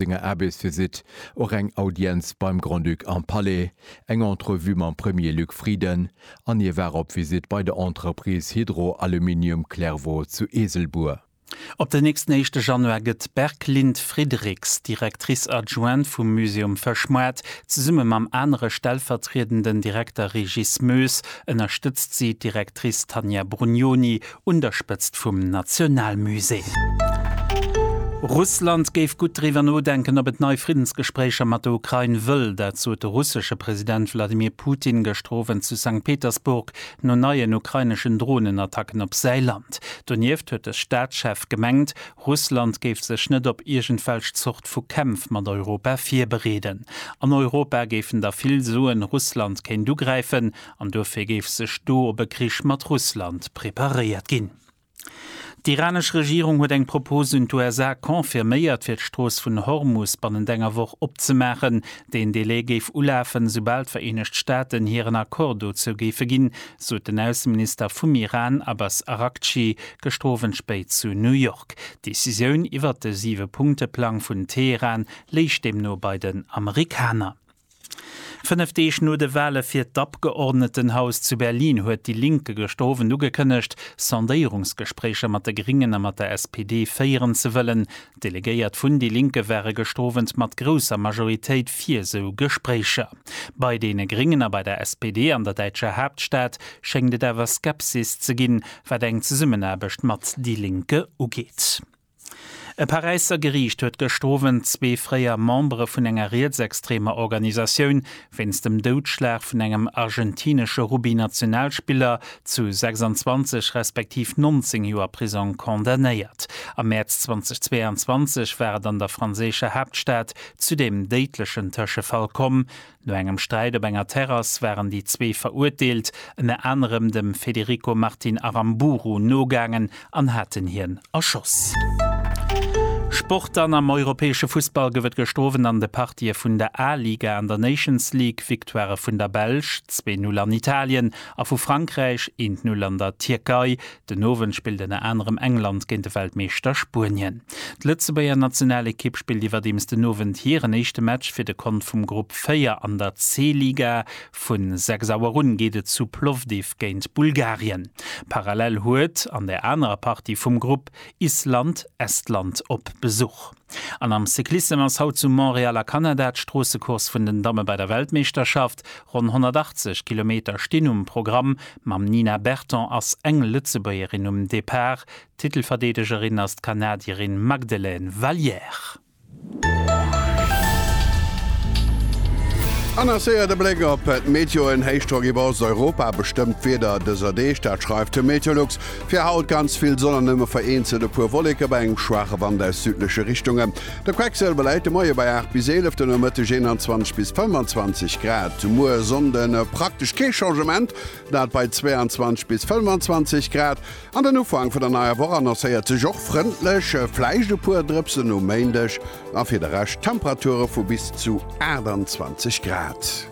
senger Aarbechtsvisitt och eng Audienz beim Grand-Duc am Palais, eng Entrevue mam Premier Luc Frieden an hie war op Visitt bei der Entreprise Hydro Aluminium Clairvaux zu Eeselbuer. Op den nächsten éischte Januar gëtt d'Berglind Friedrichs, Directrice adjointe vum Musée um Fëschmoart, zesumme mam anere stellvertriedenden Direkter Régis Moes ënnerstëtzt si d'Directrice Tanja Brugnoni un der Spëtzt vum Nationalmusée. Russland géif gutt driwwer nodenken, ob et nei Friddensgespréicher mat der Ukrain wëll. Dat sot de russesche President Wladimir Putin gëschter Owend zu Sankt Petersburg no neien ukraineschen Dronenattacken op säi Land. Donieft huet de Staatschef gemengt, Russland géif sech net op iergendwelch Zort vu Kämpf mat Europa virbereeden. An Europa géifen da vill soen, Russland kéint ugräifen. An duerfir géif sech do op e Krich mat Russland preparéiert ginn. D'iranesch Regierung huet eng Propos un d'USA confirméiert, fir d'Strooss vun Hormus bannent enger Woch opzemaachen. Deen Delai géif ulafen, esoubal d'Vereenegt Staaten hiren Accord dozou géife ginn, sot den Ausseminister vum Iran, Abbas Araghchi, gëschter Owend spéit zu New York. D'Decisioun iwwert de Siwe-Punkte-Plang vun Teheran léich deemno bei den Amerikaner. Fënnef Deeg no de Wale fir d'Abgeordnetenhaus zu Berlin huet déi Linke gëschter Owend ugekënnegt, Sondéierungsgespréicher mat de Gringen a mat der SPD féieren ze wëllen. D'Delegéiert vun déi Linke ware gëschter Owend mat grousser Majoritéit fir esou Gespréicher. Bei deene Gringen a bei der SPD an der däitscher Haaptstad schéngt et awer Skepsis ze ginn, wat eng Zesummenaarbecht mat déi Linke ugeet. E Paräisser Geriicht huet gëscht Owend zwee fréier Membere vun enger rietsextremer Organisatioun wéinst dem Doudschlag vun engem argentinesche Rugby-Nationalspiller zu 26 respektiv 19 Joer Prisong condamnéiert. Am Mäerz 2022 war et an der franséischer Haaptstad zu deem déidlechen Tëschefall komm, No engem Sträit op enger Terrass waren déi zwee Verurteelt ënner anerem dem Federico Martin Aramburu nogaangen an haten hien erschoss. Sport An am europäesche Fussball gouf et gëschter Owend an de Partië vun der A-Liga an der Nations League Victoirë vun der Belsch, zwee Null an Italien, a vu Frankräich, eent Null an der Tierkei, Den Owend spillt ënner anerem England géint de Weltmeeschter Spuenien. D'Lëtzebuerger Nationalekipp spillt iwwerdeems den Owend hiren éischte Match fir de Kont vum Grupp 4 an der C-Liga. Vu 6 Auer un geet et zu Plovdiv géint Bulgarien. Parallel huet an der anerer Partie vum Grupp Island Estland op Besuch. An am Cyclissem ass haut zu Montréal a Kanada d'Stroossecourse vun den Damme bei der Weltmeeschterschaft. Ronn 180 Kilometer stinn um Programm. Mam Nina Berton ass eng Lëtzebuergerin um Depart. Titelverdeedegerin ass d'Kanadierin Magdelaine Valliere. An a séier de Bléck op d'Meteoen, Héichdrock iwwer Osteuropa bestëmmt d'Wieder dëser Deeg, dat schreift de Meteolux. Fir haut ganz vill Sonn an nëmme vereenzelt e puer Wolleke bei engem schwaache Wand aus südleche Richtunge. De Quecksëlwer läit de Moie bei 8 bis 11, de Nomëtteg 21 bis 25 Grad. Muer Sonnde praktesch kee Changement, dat bei 22 bis 25 Grad. An den Ufank vun der neier Woch annoncéiert sech och frëndlech, vläicht e puer Drëpsen um Méindeg. A fir de Rescht Temperature vu bis zu 28 Grad.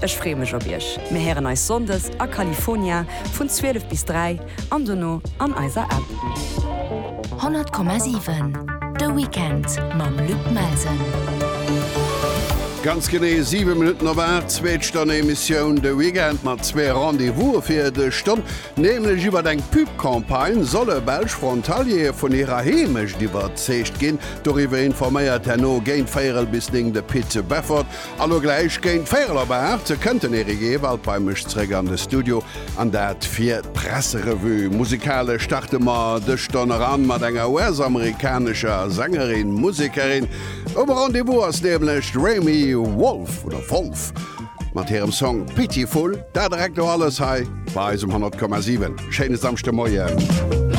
Ech freeë mech op iech. Mir héieren eis Sonndes a California vun 12 bis 3 an dono an eiser App. 100,7 De Weekend mam Luc Melsen. Ganz genee 7 Minutten op 8, zweet Stonn Emissioun De Weekend mat zwee Rendez-Vouse fir dech. Stonn nämlech iwwert eng Pub-Campagne solle belsch Frontaliere vun hirer Heemecht iwwerzeegt ginn. Doriwwer informéiert herno géint véierel bis néng de Pit Beffort. Elo gläich géint véierel op 8 kënnt den Eric Ewald bei mech zréck an de Studio an dat fir d'Presserevue. Musikalesch starte mer dës Stonn eran mat enger US-amerikanescher Sängerin, Musekerin. Um Rendez-vous ass nämlech d'Remi Wolf, oder Wolff, mat hirem Song Pitiful. Dat a recto alles hei bei eis um 100,7. Schéine Samschdemoien.